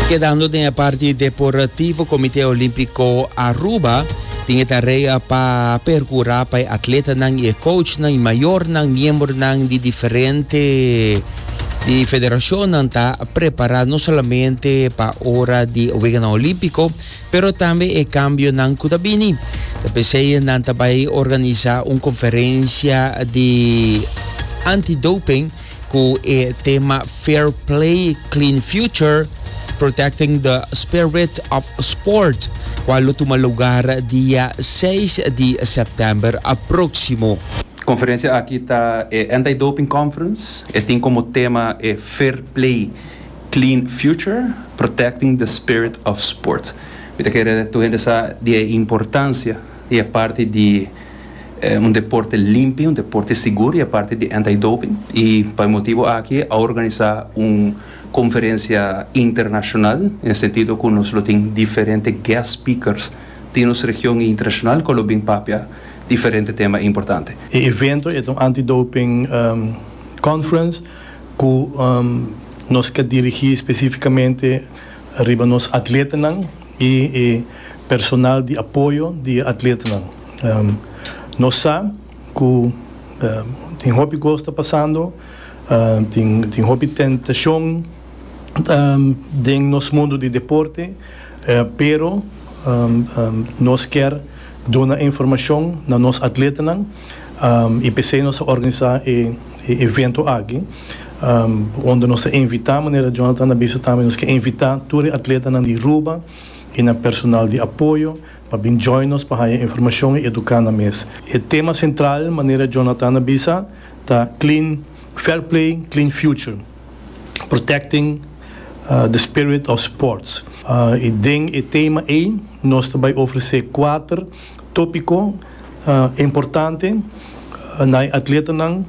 Kedando den e parti deportivo, Comité Olímpico Aruba tin e tarea pa percura pa e atletanan y e coachnan y mayornan, miembronan di diferente di federacionnan ta prepara no solamente pa ora di e Weganan Olímpico, pero tambe e cambionan cu ta bini. Ta p'esey nan ta bay organiza un conferencia di anti-doping cu e tema Fair Play, Clean Future, Protecting the Spirit of Sport, cual lo tuma lugar dia seis di september aproximo. Conferencia aki ta e Anti-Doping Conference, e tin como tema e Fair Play, Clean Future, Protecting the Spirit of Sport. Mi ta kere tur hende sa di e importancia I a parti di un deporte limpi, un deporte sigur, i a parti di anti-doping. I pa e motibu aki a organisá un konferensia internashonal, den e sentido ku nos lo tin diferente guest speakers di nos region i internashonal ku a lo bin papia diferente tema importante. E evento e ta un anti-doping conference ku nos ta dirigí spesífikamente. Riba nos atletanan i e personal di apoyo di e atletanan. Nos sa ku tin hopi kos ta pasando, tin hopi tentashon den nos mundu di deporte, pero nos kier duna e informashon na nos atletanan i p'esei nos a organisá e. e evento aki unda nos ta invita manera Jonathan a bisa tambe nos ke invita tur e atletanan di Ruba y nan personal di apoyo pa bin join nos pa haya informacion y educa nan mes. E tema central manera Jonathan a bisa ta Clean Fair Play Clean Future Protecting the Spirit of Sports y den e tema ey nos ta bay ofrece cuater topico Importante na e atletanan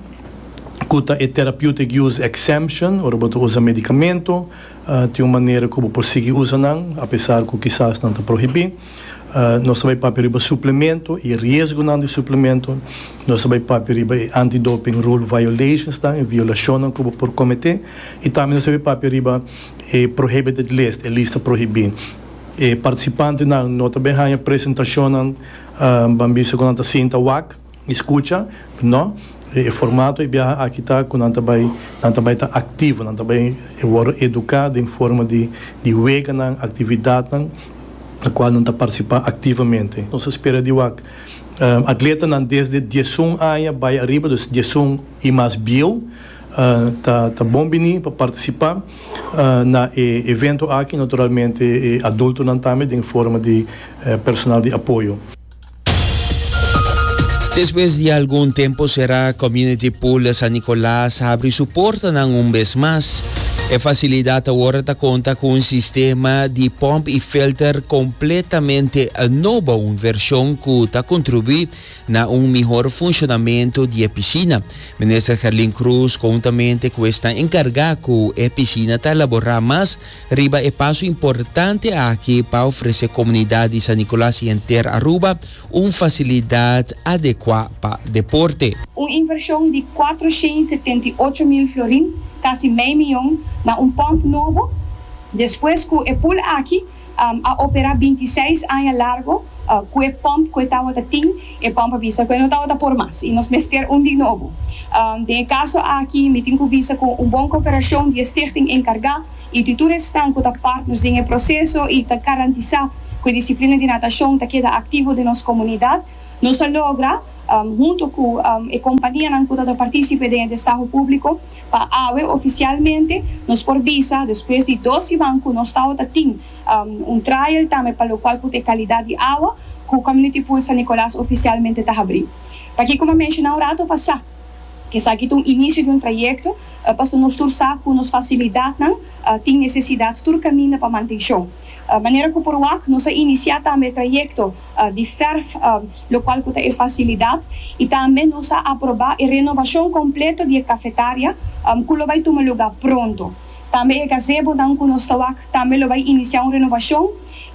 ku ta e Therapeutic Use Exemption, ora bo ta usa medikamento, tin un manera ku bo por sigui usa nan, apesar ku kisas nan ta prohibí. Nos ta bai papia riba suplemento i e riesgonan di suplemento. Nos ta bai papia riba e anti-doping rule violationsnan, e violashonnan ku bo por kometé. I tambe nos ta bai papia riba e prohibited list, e lista prohibí. E partisipantenan no ta bai haña presentashonnan. Ban bisa ku nan ta sinta wak i skucha? No. E formato di biaha aki ta ku nan ta bai nan ta bai ta aktivo, nan ta bai wòrdu eduká den forma di di weganan, aktividatnan na kual nan ta partisipá aktivamente. Nos ta spera di wak atletanan desde diesun aña bai ariba, dus diesun i mas bieu ta ta bon biní pa partisipá. Na e evento aki naturalmente e adultonan tambe den forma di personal di apoyo. Despues di algun tempu será, Community Pool San Nicolas a habri su portanan un bes mas. E facilidad awor ta conta cu un sistema di pump y filter completamente nobo, un version cu ta contribui Na un mihor funshonamentu di e pishina. Minister Gerlin Cruz kountaménte ku esnan enkargá ku e pishina ta elaborá mas riba e paso importante aki pa ofresé komunidat di San Nicolas i henter Aruba un fasilidat adekuá pa deporte. Un invershon di kuater shen i setenta i ocho mil florin, kasi mei miyon, na un pòmp nobo, despues ku e pul aki a operá binti seis aña largo ku e pòmp ku e tawata tin, e pòmp a bisa ku e no tawata por mas i nos mester un di nobo. Den e kaso aki mi tin ku bisa ku un bon koperashon di e stichting enkargá i di tur esnan ku ta partners den e proseso i ta garantisá ku e disiplina di natashon ta keda aktivo den nos komunidat, nos a logra. hunto cu e companianan cu ta ta participe den e destaho publico. Pa awe oficialmente nos por bisa despues di dos siman cu nos tawata tin un trial tambe pa locual cu ta e calidad di awa cu Community Pool San Nicolas oficialmente ta habri. Pa kico m'a menciona un rato pasa cu esaki ta un inicio di un trayecto pasobra nos tur sa cu nos facilidadnan tin necesidad tur caminda pa mantencion. Manera cu por wak nos a inicia tambe e trayecto. di ferf lo cual cu ta e facilidad y tambe nos a aproba e renovacion completo di e cafetaria cu lo bay tuma lugar pronto. Tambe e gazebonan cu nos ta wak tambe lo bay inicia un renovacion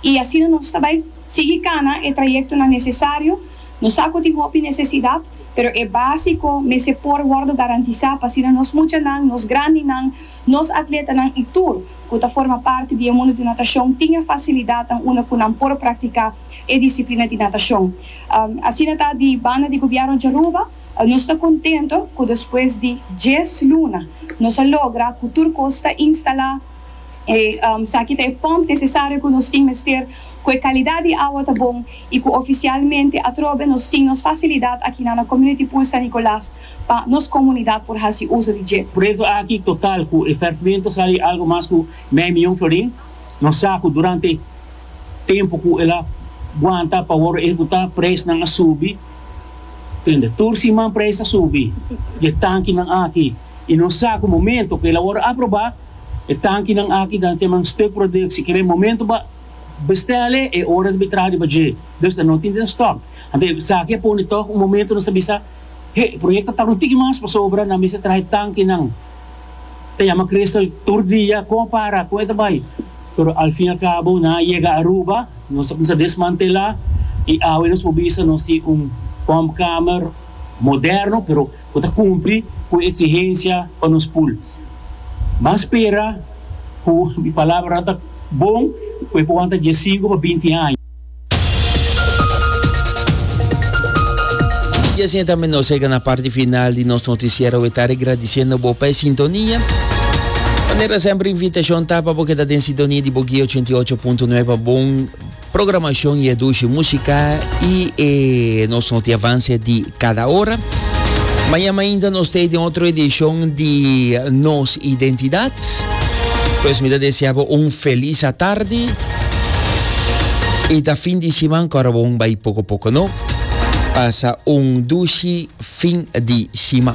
y asina nos ta bay sigui cana e trayectonan necesario. Nos sa cu tin hopi necesidad pero e basico mester por wordo garantisa pa asina nos muchanan, nos grandinan, Nos atletanan i tur ku ta forma parti di e mundu di natashon tin e fasilidatnan unda ku nan por praktiká e disiplina di natashon. Asina ta, di banda di Gobièrnu di Aruba, nos ta kontentu ku despues di dies luna nos a logra ku tur kos ta instalá. Esaki ta e pòmp nesesario ku nos tin mester, ku e kalidat di awa ta bon i ku ofisialmente atrobe nos tin nos fasilidat aki na na Community Pool San Nicolas. Pa nos comunidad por haci uso di dje. Proyecto aki total cu e fervimiento sali algo mas cu mei miyon florin. Nos sa cu durante tempo cu el a guanta pa wordo ehecuta prijsnan a subi. Tende, tur siman prijs ta subi di e tankinan aki y nos sa cu momento cu el a wordo aproba e tankinan aki ta kier nan stuk productie. Kiber momento bo a bestel e, e ora ta bin traha riba dje. Dus ta no tin den stock. Anto esaki a pone toch un momento nos ta bisa. He, e proyekto ta un tiki mas pasobra nan mester traha e tankinan. Ta yama Crystal tur dia kon a para, kon e ta bai. Pero al fin al cabo nan a yega Aruba, nos a cuminsa desmantela y awe nos por bisa nos tin un pompkamer moderno pero cu ta cumpli cu e exigencia pa nos pool. Ban spera cu mi palabranan ta bon cu e por wanta diescinco pa binti aña. Y asina tambe nos llega na parti final di nos noticiero we tari agradeciendo bo pa e sintonia. Manera sempre invitacion ta pa bo keda den sintonia di Boguí 88.9 pa bon programacion y e dushi musica y e nos noti avance di cada hora. Mañana ainda nos te den otro edicion di Nos Identidad. Pues mi ta desea bo un feliz atardi. Y ta fin di siman cora bo un bai poco poco no. Pasa un dushi fin di siman.